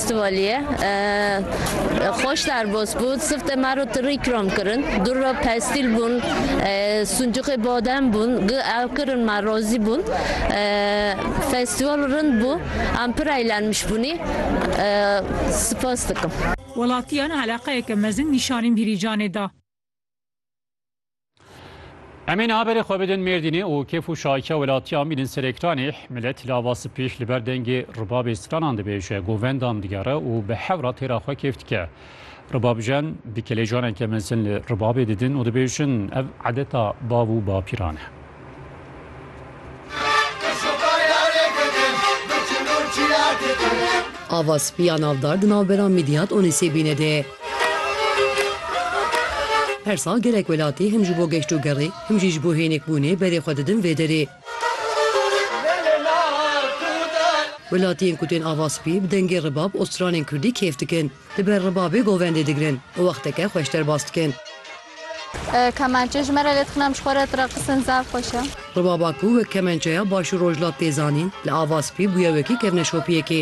Stivaliye xweş derbas bû, sifte me re tirî ikram kirin, dûr re pestîl bûn, sincûxê badem bûn, gi ew kirin me razî bûn. Festîval rind bû, em pir eğlenmiş bûnî. Sipas dikim. Welatiyan eleqeyeke mezin nîşanî Dîlîcanê da. Em ê niha berê xwe bidin Mêrdînê û kêf û şahikiya welatiyan bînin ser ekranê. Milet lava sipîş li ber dengê ribabê stranan dibêje, govendan digere û bi hewra têra xwe kêf dike. Ribabjen bi kelejaneke mezin li ribabê didin û dibêjin ev edeta bav û bapîran e. Ava spî ya navdar di navbera Midyat û Nisêbînê de ye. Her sal gelek welatî him ji bo geştogerê, him jî ji bo hênikbûnê berê xwe didin vê derê. Welatiyên ku tên ava spî bi dengê ribab û stranên kurdî kêf dikin. Di ber ribabê govendê digirin û wexteke xweş derbas dikin. Kemençe ji me re lê dixin em ji xwe re direqsin zaf xweş e. Ribaba ku wek kemençeya Başûr Rojhilat tê zanîn li ava spî bûye wekî kevneşopiyekê.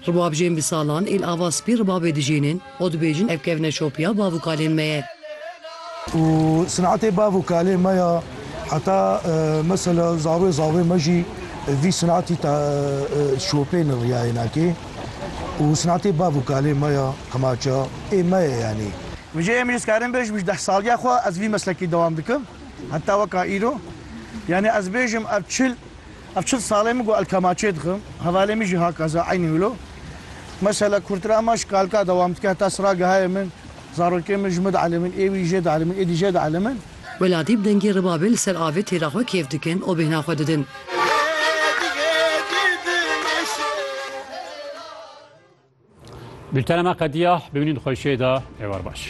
Ribabjên bi salan ê li ava spî ribabê dijînin. Xwe dibêjin ev kevne şopiya bav û kalên me ye. Û sinatê bav û kalê me ya heta mesela zavê zavê me jî vî sinatî ta şopê li riyayê nakê û sinatê bav û kalê me ya qemaça ê me ye yanî. Mijê em jî dikarim bêjim ji deh saliya xwe ez vî meslekî dewam dikim heta weka îro yanî ez bêjim ev çil Ev çil salê min ku elkemaçê dixim, hevalê min jî haka ze eynî wilo. Mesela kurtir ema ji kalka dewam dike heta sira gehayê min, zarokên min ji min dielîmin, êwî jê dielîmin, êdî jê dielîmin. Welatî bi dengê ribabê li ser avê têra xwe kêf dikin û bêhna xwe didin. Bültena me qediya, bimînin xweşiyê de, êwar baş.